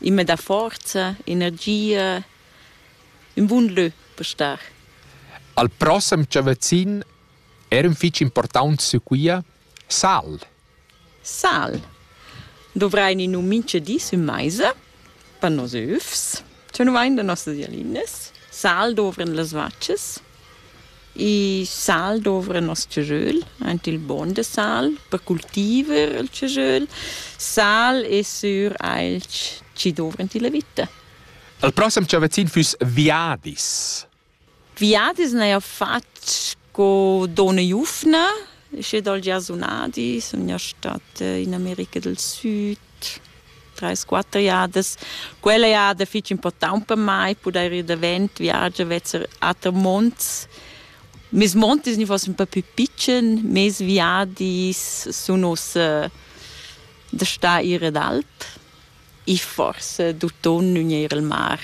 Immer da forza, energia, ün bun lö per star. Al prossem Chavazin era un fich important su quia Sal. Sal. Dovrain in un minche dis ün maisa per nos öfs. Tü nu vain da nossas jalinas. Sal dovran las vacas. I sal dovra nos tschajöl, aint il bogn da sal per cultiver il tschajöl. Sal es sur ailch chi dovrant illa vita. Il prossem chavazzin füss viadis. Viadis n'haja fat co donna Jufna, sche dal giarsunadi sun gnà stat in America del Süd. trais, quatter jadas. Quella jada fich important per mai pudair ir davent, viagiar vezzer ater monts. Mes montis ni fossen per pü pitschen, mes viadis sun ussa da star ir ad alp e forse d'uton gnir al mar.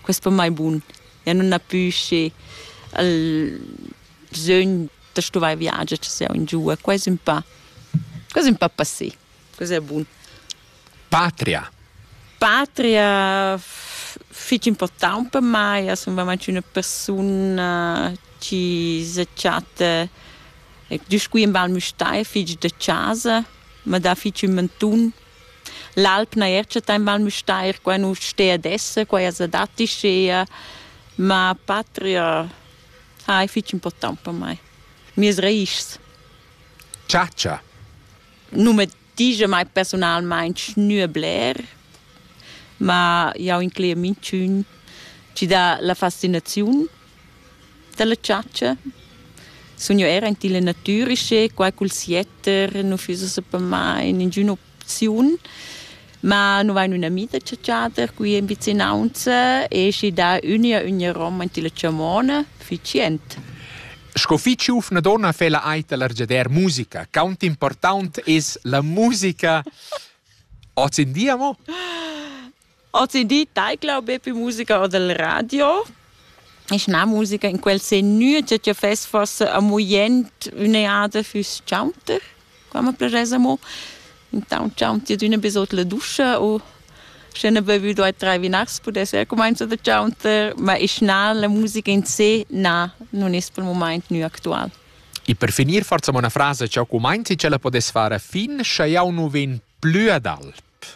Quest per mai bun. Ja nun ha pü schi il bsögn da stuvair viagiar, cha sieu ingiua. Quai es ün pa, quai es ün pa passé. Cos'è bun? Patria. Patria fich important per mai, as sun vraiment üna persun-na chi se chatta ed scuin Val Müstair fich da chasa, ma dà fich ün mantun. L'alp na er chattà in Val Müstair, qua nu stea ad esser, qua as adattischea, ma patria hai fich important per mai. Mieas raischs. Chatscha. nu me digia mai persunalmaing gnü bler, ma jau inclegia minchün chi dà la fascinaziun da la chatscha. Sun jo eir aint illa natüra, sche quai cul sietter nu füssa sapamain ingün'opziun. Ma nu vain üna amita chatschader qui in vicinaunza e schi dà üna üna roma in tilla chamona efficient. Sco fich giuvna donna fela aita l'argiader musica. Quant important es la musica oz in dia mo? Oz in di taicla be più musica o del radio. Ich na musica in quel se nü che fes forse a muient üna ade füs chaunter. Qua ma plaschass amo intaunt cha ün ti adüna be sot la duscha u sche n'ha bevü due tre vinars pudess eir cumainzo da chaunter, ma isch na, la musica in se, na, nun es pel mumaint gnü actual. E per finir forza una frase cha cumainzi ch'ella podess far a fin, scha jau nu vegn plü ad alp.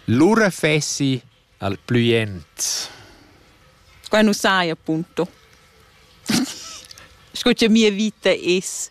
Lura fessi al plü jent. Qua nu sai appunto. Sco cha mia vita es.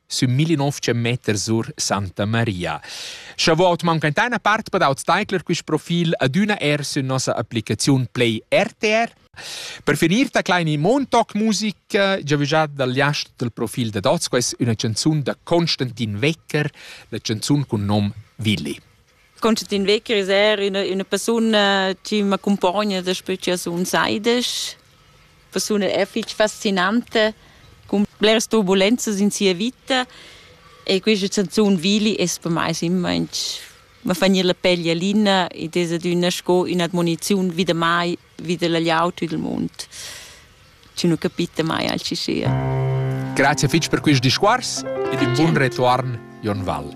sün 1900 meter sur Santa Maria. Chavot mancainta una part per aut Steigler quist profil adüna er sün nossa applicaziun Play RTR. Per finir da kleine Montauk-Musik, giavügiat dal jast del profil da Dots, quais üna canzun da Constantin Wecker, la canzun cun nom Willi. Constantin Wecker ist er eine, eine Person, die m'accompagna daspö che sun saides. Persone è fich fascinante, con bleras turbulenzas in sia vita e questa canzone Vili es per mai immer inch ma fa gnir la pel jalina ed es adüna sco ün'admoniziun vida mai, vida la gliaut e del mund. Chi nu capita mai alchi sia. Grazie fitg per quist discours ed un buon retuorn, Jon Val.